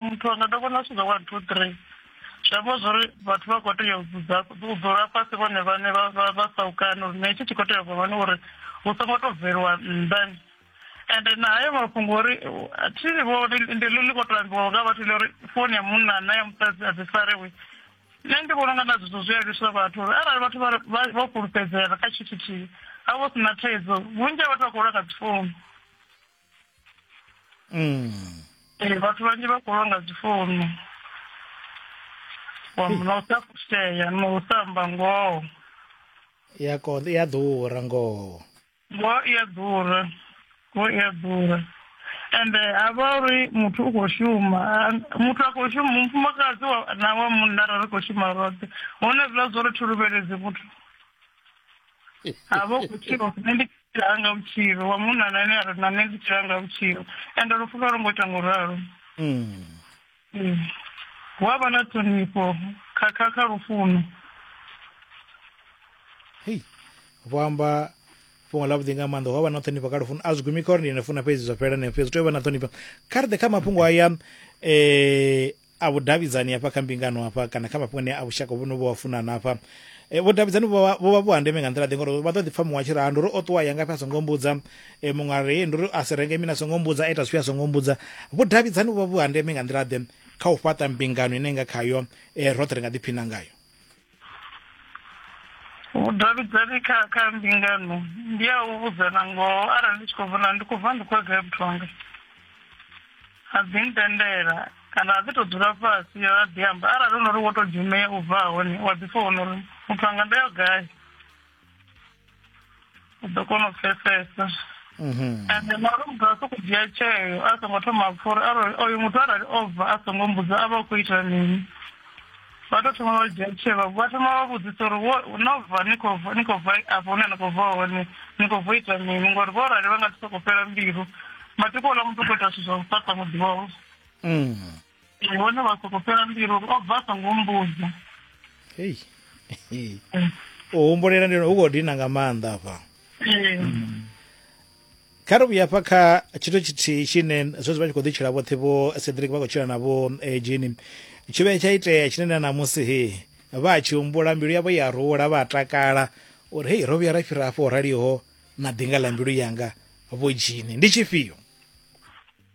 muthu wanga ndo vhona zwithu zwa one two three zwi amba zwori vhathu vha khou tea u dzudza u dzula fhasi vhone vhane vha saukane uri na itshi tshi khou tea vha vhone uri hu songo to bveliwa nnḓa ende na hayo mafhungo uri thi vho ndi ḽi ḽi khou to ambiwa nga vhathu ḽi uri founu ya munna na ya musadzi a dzi farewi nṋe ndi vhona unga na zwithu zwi a lwiswa vhathu uri arali vhathu vho fhulufhedzea kha tshithu tshithihi ha vho sina thaidzo vhunzhi ha vhathu vha khou lwa nga dzi founu mm. ee vhathu vhanzhi vha khou lwa nga dzi founu wa muna u sa fushea na u sa amba ngoho ya konḓa i a ḓura ngoho ngoho i a ḓura ngoho i a ḓura ende ha vha uri muthu u khou shuma muthu a khou shuma mufumakadzi na wa munna ra ri khou shuma roṱhe hone zwiḽa zwo ri thi luvheledzi muthu havo vhutshilo nṋe ndi tshila anga vhutshilo wa munna na ane a ri na nṋe ndi tshila anga vhutshilo ende lufu vha lo ngo ita ngo ralo mm. mm. hu a vha na ṱhonifho kha kha kha lufuno hei vho amba fhungo ḽavhuḓi nga maanḓa hu a vha na ṱhonifho kha lufuno a zwi gumi kha uri ndi ne funa fhedzi zwa fhela neo fhedzi tea u vha na ṱhonifho kha ri ḓe kha mafhungo aya um a vhudavhidzani hafha kha mbingano hafha kana kha mafhungo ane a vhushaka vhu no vho wa funana hafha e, vhudavhidzani vho vha- vho vha vhu ha ndeme nga nḓila ḓe ngori vha ḓo ḓi pfha muṅwe a tshi ri ha ndi uri o ṱuwa ya ngafhi a songo mbudza e, muṅwe a ri "Ee, ndi uri a si renge mini a songo mbudza a ita zwifhio a songo mbudza vhudavhidzani vhu vha vhu ha ndeme nga nḓila ḓe kha u fhaṱa mbingano ine nga khayo e, roṱhe ri nga ḓiphina ngayo vhudavhidzani kha kha mbingano ndi a u vhudzana ngoho arali ndi tshi khou vhona ndi khou bva ndi khou gai muthu wanga a dzi ntendela kana a dzi to dzula fhasi yo a ḓi amba arali hu no uri wo to dzhumea u bva hone wa ḓi founa uri muthu wanga ndo yo gai u ḓo kona u pfesesa mhm. ende mara muthu a soko dzhia tsheo a songo thoma pfa uri arali oyo muthu arali o bva a songo mbudza a vha u khou ita mini vha tou thoma vha dzhia tsheo vha thoma vha vhudzisa uri no bva ni khou bva ni khou bva afho hune ni khou bva hone ni khou bva ita mini ngori vho rali vha nga si soko fhela mbilu matiko ola muthu u khou ita zwithu zwa u fhaṱa muḓi wavho mm. ndi vhone vha soko fhela mbilu uri o bva a songo mbudza hei hei. u humbulela ndi hu khou dina nga maanḓa afha Eh, kha ri vhuya fha kha tshithu tshithihi tshine zwezwi vha tshi khou ḓitshila vhoṱhe vho cedric vha khou tshila na vho eh, jeni tshi vhe tsha itea tshine na namusi he vha a tshi humbula mbilu yavho ya rula vha a takala uri hei ro vhuya ra fhira afho raliho na ḓinga ḽa mbilu yanga vho jini ndi tshifhio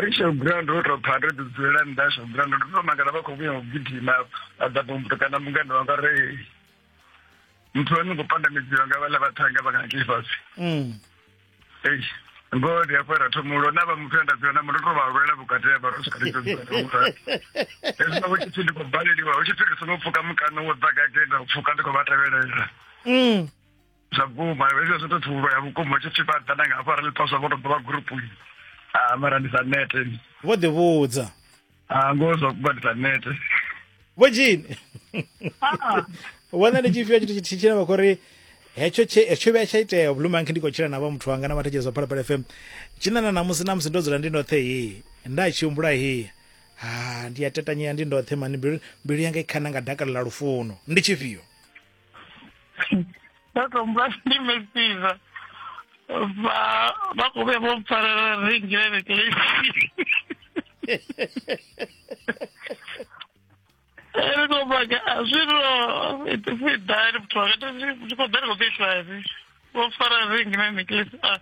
ri tshi ground ro tou pfa ri dzulela nnḓa sho ground ndo tou makala vha khou vhuya u gidima a ḓa pompoto kana mungana wanga re muthu wa ni khou pandamedziwa nga vhaḽa vhathanga vha ngaki fhasi mm. ei ngoho ndi afho ra thoma ulo na vha muthu enda dzula na mundo to vha lwela vhukati ha vha ro swika ri dzula hezwi vho tshithu ndi khou baleliwa hu tshithu ri songo pfuka mukano wo ḓa gagenda u pfuka ndi khou vha tevhelela mm. zwa guma hezwo zwi to thuvhula ya vhukuma tshi tshi vhaḓa na nga hafha ra ḽiphaswa vho to ḓo vha gurupuni a mara ndi sa nete vho ḓi vhudza a ngoho zwa vhukuma ndi sa nete vho jini wana ndi tshifhio tshithu tshithihi tshine vha khou ri hetsho tshe hetsho vhuya tsha itea vhulumanki ndi khou tshila na vha muthu wanga na vhathetshe zwa phalaphala fm tshina na namusi namusi ndo dzula ndi ndoṱhe hi nda tshi humbula hi ha ndi a tetanyea ndi ndoṱhe mani mbilu mbilu yanga i khana nga dakalo ḽa lufuno ndi tshifhio ndo tombula ndi mesiva vha vha khou vhuya vho mpfarela ringile neclesi ri khou baga a zwino fidani muthu wakato ndi khou ḓa ndi khou ḓi tlani vho mpfarela ringile neclesi a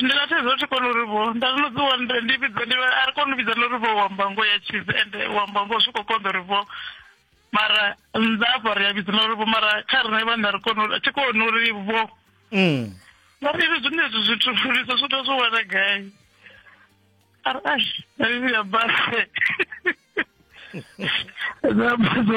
ndi nga thaidzo thi koni uri vho nda zwino dzi wondre ndi vhidza ndi a ri koni u vhidza nori vho wamba ngo ya tshisi ende wamba ngo zwi khou konḓa uri vho mara nnḓa afha ri a vhidza nori vho mara kha rine vhana ri koni uri thi koni uri vho mm. ngari ri zwine zwithu zwithu lisa zwithu zwo wana gai ari ai ya base na base